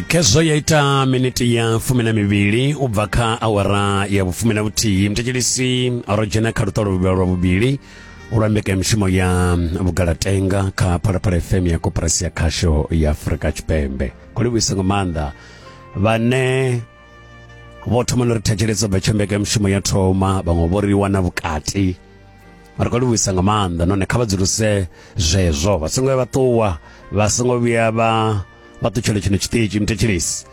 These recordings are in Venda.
khezwo ya ita miniti ya fumi na mivhili u bva kha awara ya vhufumi na vhuthihi mthetshelisi ro dzhena kha luṱolo luvhila lwa vhuvhili lwa mbekanyamushumo ya vhugalatenga kha phalaphala fm ya koporasi ya khasho ya afurika tshipembe khou livhuisa nga maanḓa vhane vho thoma no ri thetshelesa bva tsho mbekanyamushumo ya thoma vhaṅwe vho ri wana vhukati ri khou livhuisa nga maanḓa nahone kha vha dzuluse zwezwo vha songo vhuya vha ṱuwa vha songo vhuya vha vha ṱutshele tshino tshiṱitshi muthetshelesi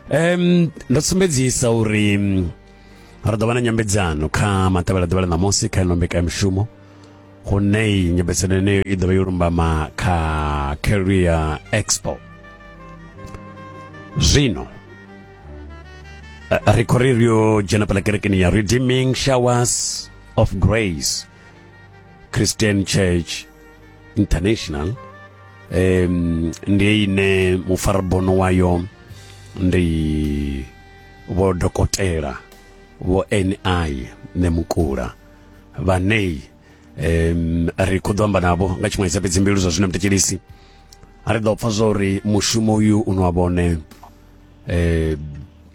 um ndo sumbedzisa uri ri ḓo vha na nyambedzano kha matevhela ḓuvha ḽa ṋamusi kha ino mbekanyamushumo hune nyambedzano yeneyo i ḓo vha yo lumbama kha career expo zwino eh, ri khou ri ri yo dzhena phala kerekeni ya redeeming showers of grace christian church international um, ndi ine mufarabono wayo ndi vho dokotela vho ni nemukula vhaneyi um, ri khou ḓo amba navho nga tshiṅwe tsha fhedzi mbilu zwa zwino mtekelisi a ri ḓo pfa zwa uri mushumo uyu u no wa vhone eh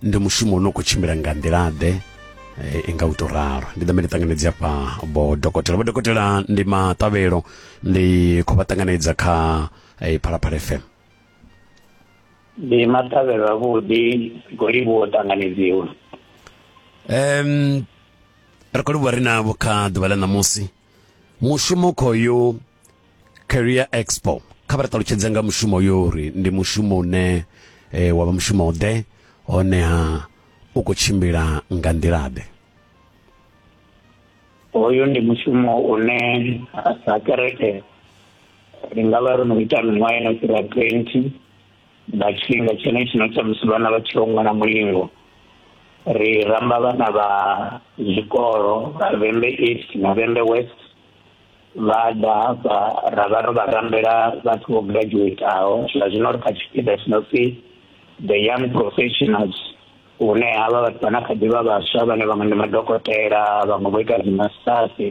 ndi mushumo une khou tshimbila nga nḓila-ḓe eh, i nga u tou ralo ndi ḓambe ndi ṱanganedze afha vho dokotela vho dokotela ndi maṱavhelo ndi khou vha ṱanganedza kha eh, phalaphala fm ndi maṱavhelo avhuḓi golivho o ṱanganedziwa um ri khou livhuwa ri navho kha ḓuvha ḽa ṋamusi mushumo khoyo career expo kha vha ri ṱalutshedze nga mushumo yo uri ndi mushumo une e, wa vha mushumo ḓe honeha u khou tshimbila nga nḓilaḓe hoyu ndi mushumo une sa kereke ri nga vha ro no ita miṅwaha ino fhira twenty nga tshifhinga tshenetshino tsha musi vhana vha tshi ongwana mulingo ri ramba vhana vha zwikolo vha vhembe east na vhembe west vha ḓa hafha ra vha ro vha rambela vhathu vho graduataho zwa zwino ri kha tshipiḓa tshi no pfi the young professionals hune havha vhathu vhana kha ḓivha vhaswa vhane vhaṅwe ndi madokotela vhaṅwe vho ita dzimastasi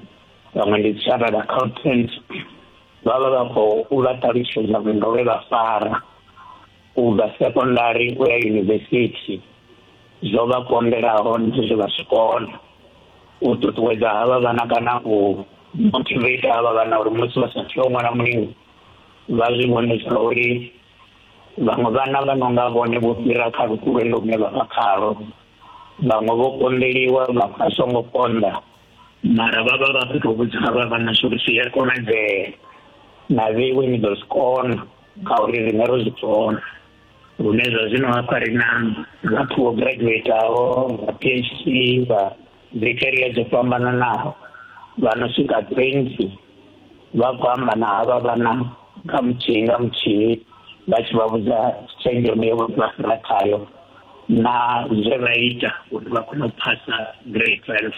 vhaṅwe ndi chartered accountant vha vha vha khou vha ṱalutshedza vhundo vhe vha fara u bva sekondari u ya yunivesithi zwo vha konḓelaho ndi zwe vha zwi kona u ṱuṱuwedza havha vhana kana u motivate havha vhana uri musi vha sa tea u ṅwala mulingo vha zwi vhone zwa uri vhaṅwe vhana vha no nga vhone vho fhira kha lukulwendo lune vha vha khalo vhaṅwe vho konḓeliwa vha vha songo konḓa mara vha vha vha fhethu vhudza havha vhana zwa uri zwi a konadzea na vheiwe ni ḓo zwi kona kha uri riṋe ro zwi pfona lune zwa zwino hafha ri na vhathu vho graduataho vha phd vha dzi caria dzo fhambananaho vha no swika twenty vha khou amba na havha vhana nga muthihi nga muthihi vha tshi vha vhudza tshenzhemo yo vha fhira khayo na zwe vha ita uri vha kone u phasa grade twelve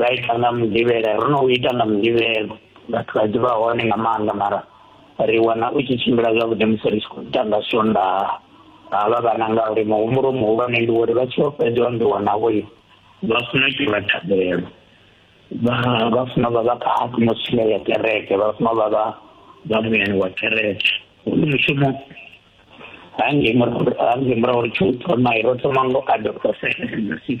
ra ita nga mudivhela ro no u ita nga mudivhelo vhathu vha ḓivha hone nga maanḓa mara ri wana u tshi tshimbila zwavhuḓi musi ri tshi khou ita nga swonda ha vha vhana ngauri muhumbulo muhulwane ndi uri vha tshi vha fhedza ndi wanavho vha funa u itiwa thabelo vha vha funa vha vha kha atmosphere ya kereke vha funa vha vha vha muyani wa kereke ndi mushumo hangei murahu hangei murahu ri tshi u thoma ro thoma ngo adopta seven six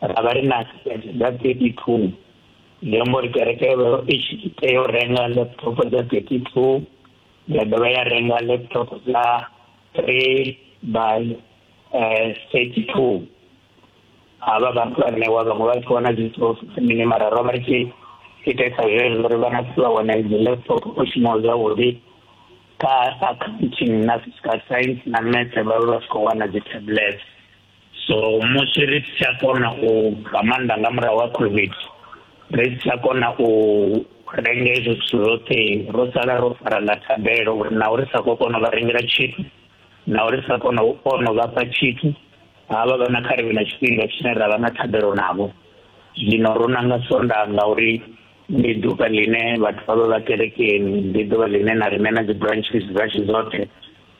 ra vha ri na asset dza 32 zwi amba uri kereke yo vha i tshi tea u renga laptop dza 32 ya dovha ya renga laptop dza 3 by eh, 32 havha vhathu vha ṋewa vhaṅwe vha tshi wana dzi trophy mini mara ro vha ri tshi itesa zwezwo uri vhana vha wana dzi laptop o shumaho zwavhuḓi ka accounting na physical science na maths vha vha vha tshi khou wana dzi tablets so musi ri si tsha kona u nga maanḓa nga murahu ha covid ri si tsha kona u renga hezwo zwithu zwoṱhe ro sala ro fara nga thabelo uri na uri sa khou kona u vha rengela tshithu na uri sa kona u kona u vha fha tshithu havha vha na kharivhe na tshifhinga tshine ra vha na thabelo navho zwino ro nanga sonda ngauri ndi ḓuvha ḽine vhathu vha vha vha kerekeni ndi ḓuvha ḽine na riṋe na dzi branches dzashu dzoṱhe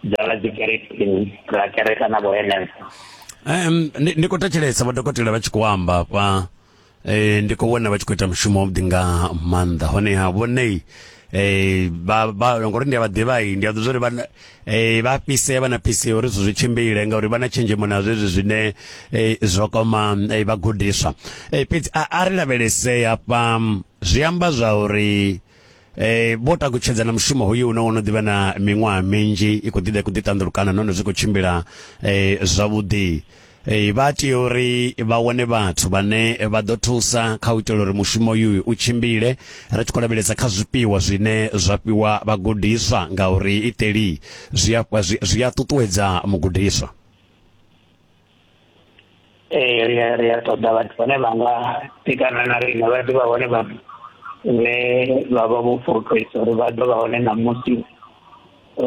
dzala dzi kerekeni ra kereka na vho henefho um ndi ndi khou thetshelesa vhadokotela vha tshi khou amba hafha eh ndi khou vhona vha tshi khou ita mushumo wavhuḓi nga maanḓa honeha vhonei eh ba ba ngori ndi a vha ḓivhai ndi a ḓivha uri vha na- eh vha fhisea vha na fhisea uri zwithu zwi tshimbile ngauri vha na tshenzhemo na zwezwi zwine eh zwo koma eh, vhagudiswa eh fhedzi a a ri lavhelesei hafha mm, zwi amba zwa uri Eh vho takutshedza na mushumo hoyu une wono ḓivha na miṅwaha minzhi i khou ḓiḓa i khou ḓiṱanḓulukana nahone zwi khou tshimbila eh zwavhuḓi eh vha tea uri vha wane vhathu vhane vha ḓo thusa kha u itela uri mushumo uyu u tshimbile ri tshi khou lavhelesa kha zwifhiwa zwine zwa fhiwa vhagudiswa ngauri iteli zwi a zwi a ṱuṱuwedza mugudiswa ee ri a ri a ṱoḓa vhathu vhane vha nga tikana na riṋe vha ḓivha hone vha ne vha vha vho fulufhedzisa uri vha ḓo vha hone na musi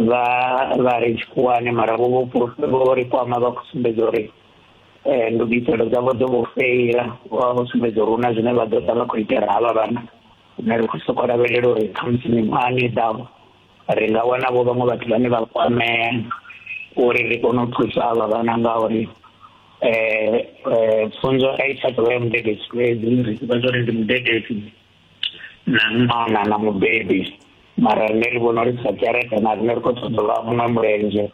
vha vha ri tshikhuwani mara vho vho vho ri kwama vha khou sumbedza uri um ndugiselo dzavho dzo vho feila vha vho sumbedza uri hu na zwine vha ḓo ḓa vha khou itela havha vhana rine ri khou sokou lavhelela uri khamusi miṅwahani i ḓaho ri nga wana vho vhaṅwe vhathu vhane vha kwamea uri ri kone u thusa avha vhana ngauri um pfunzo a i tsha ḓovha ya mudededzi fhedzi ri ḓivha zwa uri ndi mudededzi na ṅwana na mubebi mara rine ri vhona uri sa kereke na rine ri khou ṱoḓa vha muṅwe mulenzhe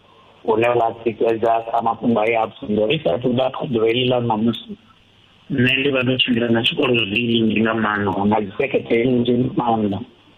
une wa tikedza kha mafhungo a ya pfunzo ri sa athu ḓa kha ḓuvha heḽi ḽa ṋamusi nṋe ndi vha ndo tshimbila na tshikolo zwinzhi nga maanḓa na dzi seketheni nzhi maanḓa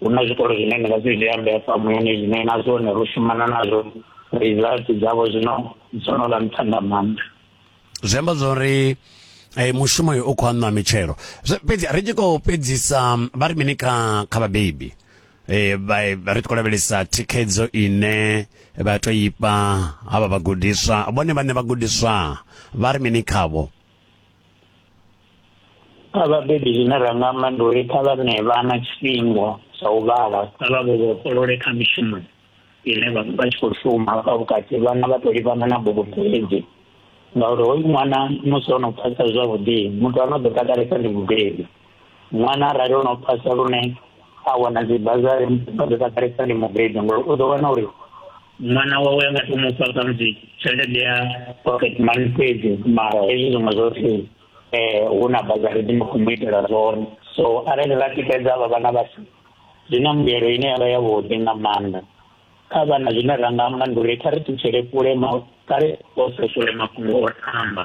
hu na zwikolo zwine ni nga zwi zwi ambesa muyani zwine na zwone ro shumana nazwo results dzavho zwino dzo no vha nṱha nga maanḓa zwi amba zwa uri eh, mushumo uyu u khou aṋwa mitshelo fhedzi ri tshi khou fhedzisa vha ri mini kha kha vhabebi eh ri tshi khou lavhelesa thikhedzo ine vha to ifha havha vhagudiswa vhone vhane vhagudiswa vha ri mini khavho kha vhabebi zwine ra nga amba ndi uri kha vha ṋee vhana tshifhinga tsha u vhala kha vha vho vhofholole kha mishumo ine vha vha tshi khou shuma hafha vhukati vhana vha tou livhana na bugu fhedzi ngauri hoyu ṅwana musi o no phasa zwavhuḓi muthu ano ḓo takalesa ndi mubebi ṅwana arali o no phasa lune a wana dzi bazari a ḓo takalesa ndi mubebi ngori u ḓo wana uri mwana wawe a nga to mu fha khamusi tshelede ya pocket money fhedzi mara hezwi zwiṅwe zwoṱhe um hu na bazari dzine khou mu itela zwone so arali vha tikedza vha vhana vhashu zwi na mbuyelo ine ya vha yavhuḓi nga maanḓa kha vhana zwine ra nga amba ndi uri kha ri ṱutshele kule kha ri posesule mafhungo o tamba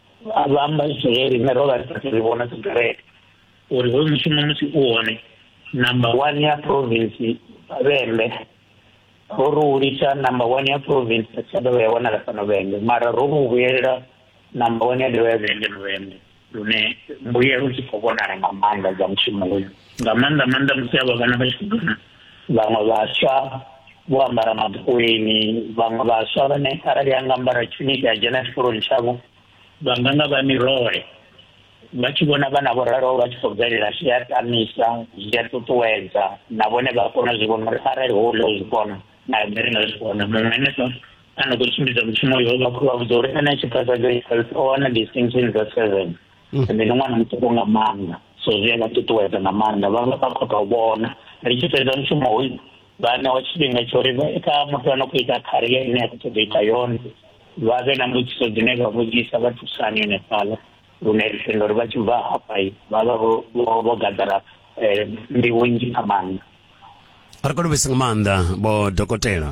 a vha amba zwine riṋe ro vha ri sathu ri vhona dzikereke uri hoyu mushumo musi u hone number one ya province vhembe ro ri u litsha number one ya province a tsha dovha ya wanala fhano vhembe mara ro ri u vhuyelela number one ya dovha ya vhembe no vhembe lune mbuyelo dzi khou vhonala nga maanḓa dza mushumo uyu nga maanḓa maanḓa musi a vha vhana vha tshi khou vhaṅwe vhaswa vho ambara mabukweni vhaṅwe vhaswa vhane arali a nga ambara tshuniki a dzhena tshikoloni tshavho vha nga nga vha mirole vha tshi vhona vhana vho raloho vha tshi khou bvelela zwi a tamisa zwi a ṱuṱuwedza na vhone vha kona zwi vhona uri arali ho ḽa zwi kona na nṋe ndi nga zwi kona muṅwe henefho a no khou tshimbidza mushumo uyo vha khou vha vhudza uri ene tshiphasadzo o wana distinction dza seven Mm. ende ndi ṅwana muṱuku nga maanḓa so zwi a vha ṱuṱuwedza nga maanḓa vha vha khou tou vhona ri tshi fhedza mushumo hoyu vha ṋewa tshifhinga tsho ri kha muthu ano khou ita kharia ine ya khou ṱoḓa ita yone vha vhe na mbudziso dzine vha vhudzisa vha thusani henefhaḽa lune ri tenda uri vha tshi bva hafha vha vha vho gaḓara um nḓivho nnzhi nga maanḓa ri kho livhisa nga maanḓa vho dokotela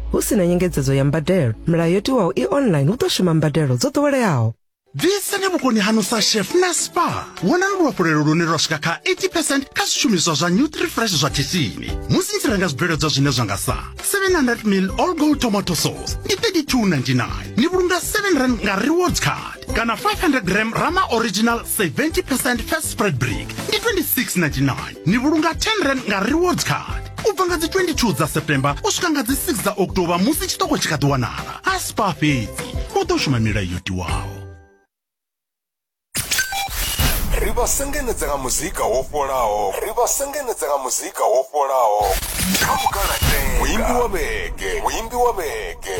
Hu si na nyengedzedzo ya mbadelo, milayo yo tiwaho i online hu ḓo shuma mbadelo dzo ḓoweleaho. Ḓisani vhukoni hanu sa chef na spa. Wonani luhafhulelo lune lwa swika kha 80 percent kha zwishumiswa zwa Nutrifresh zwa khishini musi ni tshi renga zwibveledzwa zwine zwa nga sa 700 ml all gold tomato sauce ndi 32.99 ni vhulunga 7 rand nga rewards card. kana 500 gram rama original 70 percent fat spread brick ndi 26.99 ni vhulunga 10 rand nga rewards card u bva nga dzi 22 dza september u swika nga dzi 6 dza oktoba musi tshiṱoko tshi kha ḓi wanala a spa fhedzi u ḓo shuma milayo yo tiwaho ri vha sengenedza nga muzika wo fholaho ri vha sengenedza nga muzika wo fholaho kha mukalatenga muimbi wa vhege muimbi wa vhege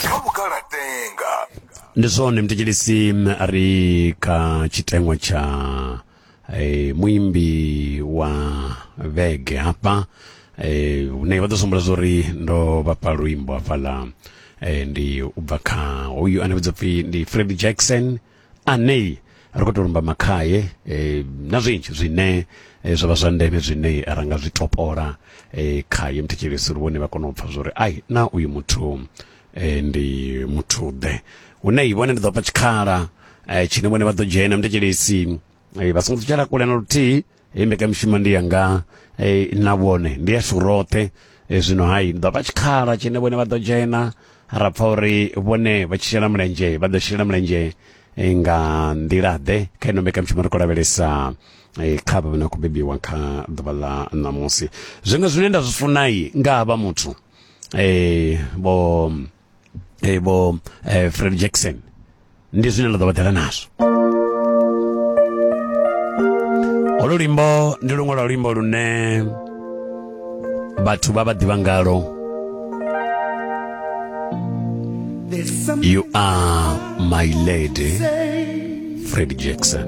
kha mukalatenga ndi zwone mthetshelesi a ri kha tshiteṅwa tsha eh, muimbi wa vhege hafha eh, hune vha ḓo sumbula zwa uri ndo vhafha luimbo hafhaḽa eh, ndi u bva kha hoyu ane vhidza pfi ndi fred jackson ane ri khou tou lumba makhaye eh, na zwinzhi zwine eh, zwa vha zwa ndeme zwine ra nga zwi topola eh, khaye mthetshelesi uri vhone vha kone u pfha zwa uri ai na uyu muthu e, ndi muthuḓe hune i vhone ndi ḓo fha tshikhala e, tshine vhone vha ḓo dzhena mndetshelesi e, vha songo ṱutshela kule na luthihi hei mbekamishumo ndi yanga e, na vhone ndi yashu roṱhe e, zwino hai ndi ḓo fha tshikhala tshine vhone vha ḓo dzhena ra pfa uri vhone vha tshi shela mulenzhe vha ḓo shela mulenzhe e, nga nḓila-ḓe kha ino mbekamishumo ri khou lavhelesa e, kha vha vha na khou bebiwa kha ḓuvha ḽa ṋamusi zwiṅwe zwine nda zwi funai nga ha vha muthu eh, vho eh, vho eh, fred jackson ndi zwine nda ḓo vha ḓela nazwo olu luimbo ndi luṅwe lwa luimbo lune vhathu vha vha ḓivha ngalo you are my lady fred jackson